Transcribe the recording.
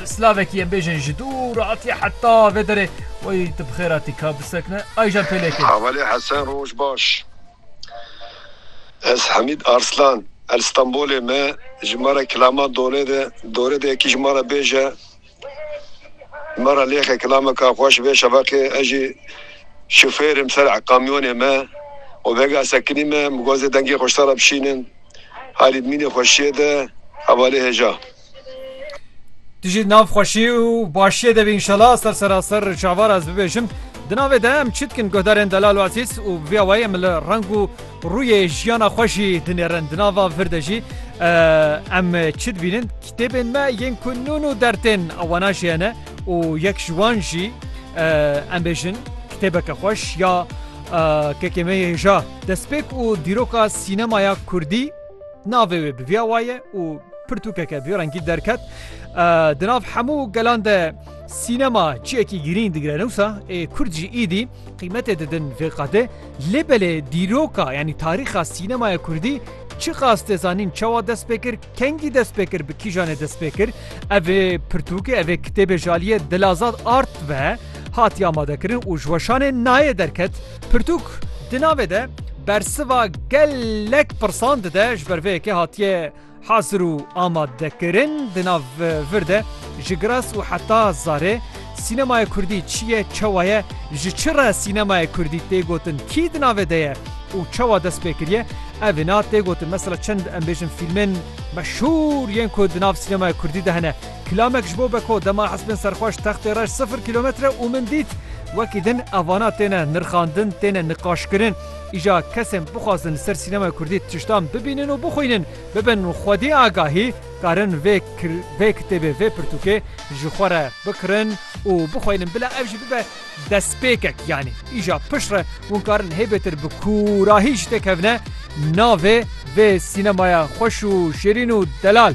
Bi slavekî em bêjin ji dûr hatiye heta vê derê wey tu bi xêr hatî ka bisekine Ayjan Pêlekê. Hevalê Hesen roj baş. Ez Hamîd Arslan el Stenbolê me ji me re kilaman done de dore de yekî ji me re bêje me re lêxe kilameka xwe ji vê şeveqê ez jî şofêr im ser kamyonê me û vega sekinî me mixwazê dengê xweştara bişînim halî mînê xweşiyê de hevalê hêja. Tu jî nav xweşî û başiyê de bî înşela ser seraser çavar ez bibêjim. Di navê de em çi dikin guhdarên delal û ezîz û bi vê awayî em li reng û rûyê jiyana xwe jî dinêrin. Di nava vir de jî em çi dibînin kitêbên me yên ku nûn û dertên wana jî hene û yek ji wan jî em bêjin kitêbeke xweş ya kekê me yê hêja destpêk û dîroka sînemaya kurdî. Navê wê bi viya waye û pirtûkeke bi rengî derket. Di nav hemû gelan de sînema çiyekî girîng digire newsa ê Kurd jî îdî qîmetê didin vê qadê lê belê dîroka yanî tarîxa sînemaya Kurdî çi qas tê zanîn çawa dest pê kir kengî dest pê kir bi kîjanê dest pê kir evê pirtûkê evê kitêbê jaliyê dilazad art ve hatiye amadekirin û ji weşanê nayê derket. Pirtûk di navê de bersiva gelek pirsan dide ji ber vê yekê hatiye hazir û amadekirin di nav vir de ji giras û heta zarê sînemaya kurdî çi ye çewa ye ji çi re sînemaya kurdî tê gotin kî di navê de ye û çewa dest pê kiriye ev ê na tê gotin mesela çend em bêjin fîlmên meşhûr yên ku di nav sînemaya kurdî de hene Kilamek ji bo beko dema hespên serxweş textê reş sifir kîlometre û min dît wekî din ev vana têne nirxandin, têne niqaşkirin. Îja kesên bixwazin li ser sînemaya kurdî tiştan bibînin û bixwînin, bibin xwedî agahî, karin vê vê kitêbê, vê pirtûkê ji xwe re bikirin û bixwînin bila ev jî bibe destpêkek yanî îja pişt re hûn karin hêbêtir bi kûrahî jî têkevne navê vê sînemaya xweş û şêrîn û delal.